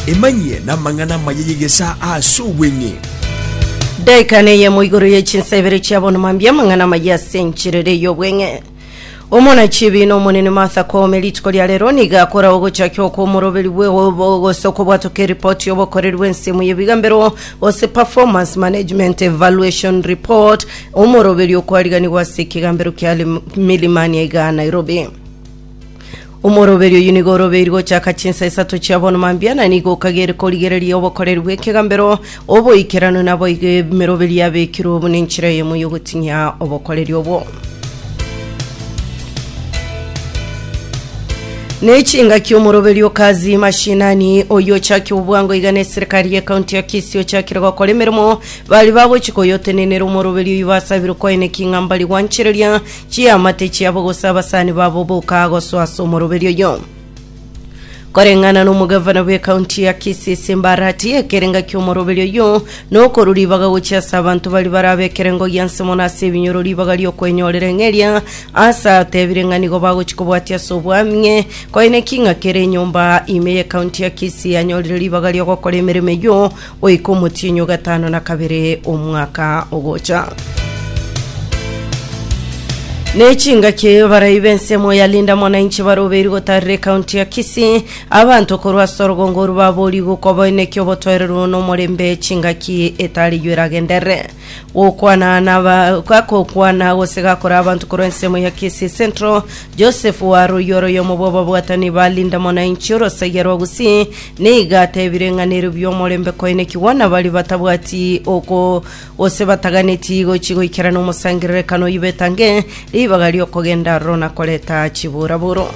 Emanyie namang'ana amaya y'egesaa ase obweng'e. Daika neyemo igoro ye chinsa ibere chia bono mambia amang'ana amaya ase enchiriri ey'obweng'e. Omona chibi na omonene Martha Koome rituko ria rero nigo akora ogochakia okwo omoroberi bwe gose okobwatoka eripoti y'obokoreri bw'ensemo y'ebigambero gose performance management evaluation report omoroberi okwariganigwa ase ekegambero kia Milimani iga Nairobi. Omoroberi oyio nigo orobeiri gochaka chinsa isato chia bono mambia, na nigo okagere korigereria obokoreri bw'ekegambero, oboikeranu, na boigo emeroberi yabekirwe obo nenchera eyemo y'ogoting'ia obokoreri obwo. Nechingaki omoroberi o Kazi Mashinani oyio ochakire obwango iga ne serikali ye county ya Kisii ochakire gokora emeremo bari bagochi koyotenenera omoroberi oyio basabire kwaeneki ng'a mbari gwanchereria Chiamate chiabo gose abasani babo boka gosoa ase omoroberi oyo koreng'ana n'omogavana bw'ekaunti ya Kisii ase embarati ekerenga ki'omoroberi oyo nokorwa ribaga gochia ase abanto bari barabe ekerengo gianse mono ase ebinyoro ribaga ri'okwenyorera eng'eria ase atebire ng'a nigo bagochi kobwatia ase obwamie koine king'a kere enyomba ime y'ekaunti ya Kisii yanyorire ribaga ri'ogokora emeremo eyio goika omotienyi o gatano na kabere omwaka ogocha. Ne chingaki barai b'ensemo ya Linda Mwananchi barobeiri gotarera ekaunti ya Kisii abanto korwa ase orogongo oru babori gokwa boeneki obotoereru nomorembe chingaki etareywo eragenderere. Gokwana na ba- ga- gokwana gose gakora abanto korwa ensemo ya Kisii Central, Joseph Warui ore oyomo bw'ababwatani ba Linda Mwananchi orosaiya rwa Gusii, nigo atebire ng'a nerobio omorembe koenekigwa na baria batabwati oko gose bataganeti gochi goikerana omosangererekano oyio betange Ribaga ri'okogenda aroro na koreta chiburaburo.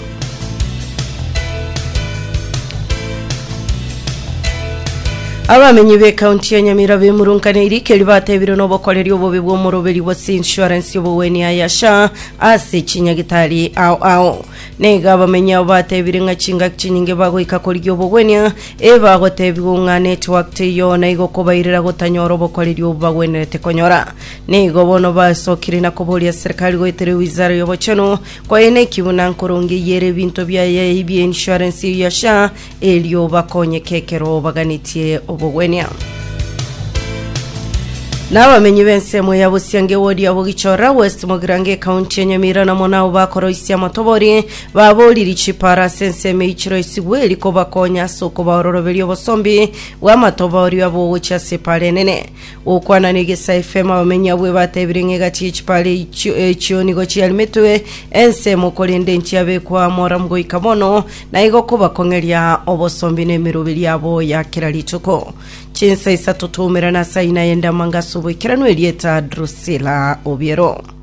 Abamenyi b'ekaunti ya Nyamira bemurunkaneirie ekeri batebirwe n'obokoreri obobe bw'omoroberi bwa insurance y'obogweni aya SHA ase chinyagitari ao ao. Naiga abamenyi abo batebire ng'a chingaki chinyinge bagoika korigia obogwenia ebagotebigwa ng'a network teiyo naigo kobairera gotanyora obokoreri obo bagwenerete konyora. Nigo bono basokire na koboria serikali goetera ewizara y'obochenu kwaye na ekiguna nkoronge eyere ebinto biaye ebie insurance eyio ya SHA erio bakonyeke ekero baganetie obogwenia. N'abamenyi b'ensemo ya Busiange wodi ya Bogichora West Mogirango ekaunti ya Nyamira namo nabo bakoroisia amatobori baboriri chipara ase ensemo eichiro esigwe eri kobakonya ase okobaororoberia obosombi bw'amatobori abo ogochia ase epara enene. Gokwana negesa efemo abamenyi abwo ebatebire ng'a egati y'echipara eichio echio nigo chiarimetwe ensemo korende nchiabekwa amoramu goika bono, na igo koba kong'eria obosombi n'emeroberi yabo ya kera rituko. Chinsa isato twaumerana ase aina y'endamanga ase oboikeranu erieta Drusila obiero.